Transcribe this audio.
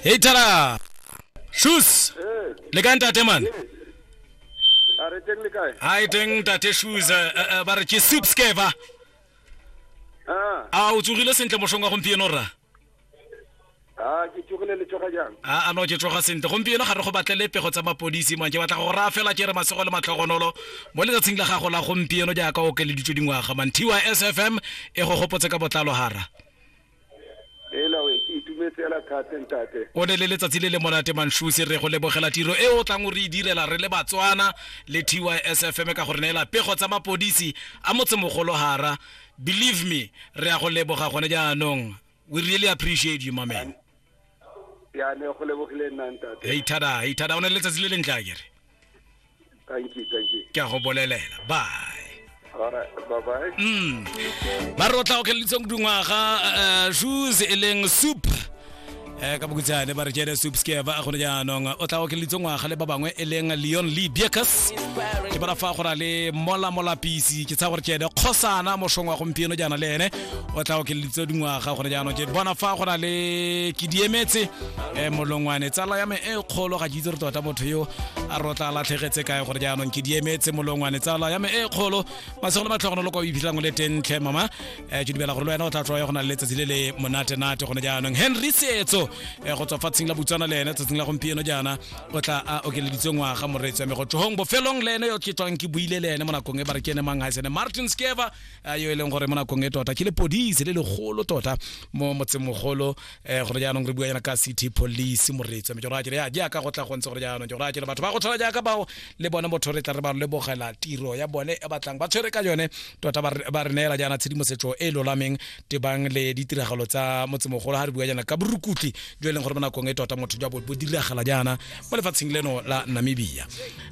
Hey Tara. Shoes. Le ka ntate man. a re teng le kae Hi teng ntate Shoes. eh, eh, eh, Ba re ke soup skeva. Ah, A o tsogile sentle moshong wa gompieno ra. ah, ke tsogile le tsoga jang a a no ke tsoga sentle gompieno ga re go batlele pego tsa mapodisi man ke batla go raya fela ke re masego le matlhogonolo mo letsatsing la gago la gompieno jaaka o okeleditswe dingwaga man tys fm e go gopotse ka botlalo hara ela we ke itumetse ela thate ntate o ne le letsatsi le le monate manshuse re go lebogela tiro e o tlang o re e direla re le batswana le tysfm ka gore neela pego tsa mapodisi a motsemogolo gara believe me re ya go leboga gone jaanong we really appreciate you mamen ya ne go lebogile nna ntate heithada heithada o ne le letsatsi le lentle a kere thank you thank you ke a go bolelela bye Mm. ba re o tla okeleditseng dingwaga eh, shoes e leng soup um ka bokutsane ba re jede soup skeva gone jaanong o tla okeleditse ngwaga le ba bangwe e leng leon lee biacus ke bara fa go na le mola molapisi ke tsaya gore jede kgosana mošong wa gompieno jaana le ene o tla okeleditse dingwaga gone jaanong jede bona fa go na le ke diemetse um molongwane tsala ya me e kgolo ga ke itse re tota motho yo a re o tla latlhegetse kae gore jaanong ke diemetse molongwane tsala ya me e kgolo masego le matlhogono lo kwa o iphitlhang o le tentle mama um ke dumela gore le wena o tla tloya go na le letsatsi le le monate-nate gone jaanong henry setso um go tswa fatsheng la botswana le ene tsatsing la gompieno jaana o tla a okeleditse ngwaga moreetsi wa me go tlohong bofelong le ene yo ke tswang ke buile le ene mo nakong e ba re ke ene mang ga e sene martin skeva yo e leng gore mo nakong e tota ke le podise le legolo tota mo motsemogolo eh gone jaanong re bua yana ka city police moretso me jora kere ya jaaka go tla go ntse gore jaanong jora kere batho ba go tshwana jaaka bao le bone motho re tla re ba re lebogela tiro ya bone e batlang ba tshwere ka yone tota ba re- ba re neela jaana tshedimosetso e e lolameng tebang le ditiragalo tsa motsemogolo ga re bua jaana ka borukutli jo e leng gore mo nakong e tota motho jwa bo bo diragala jaana mo lefatsheng leno la namibia a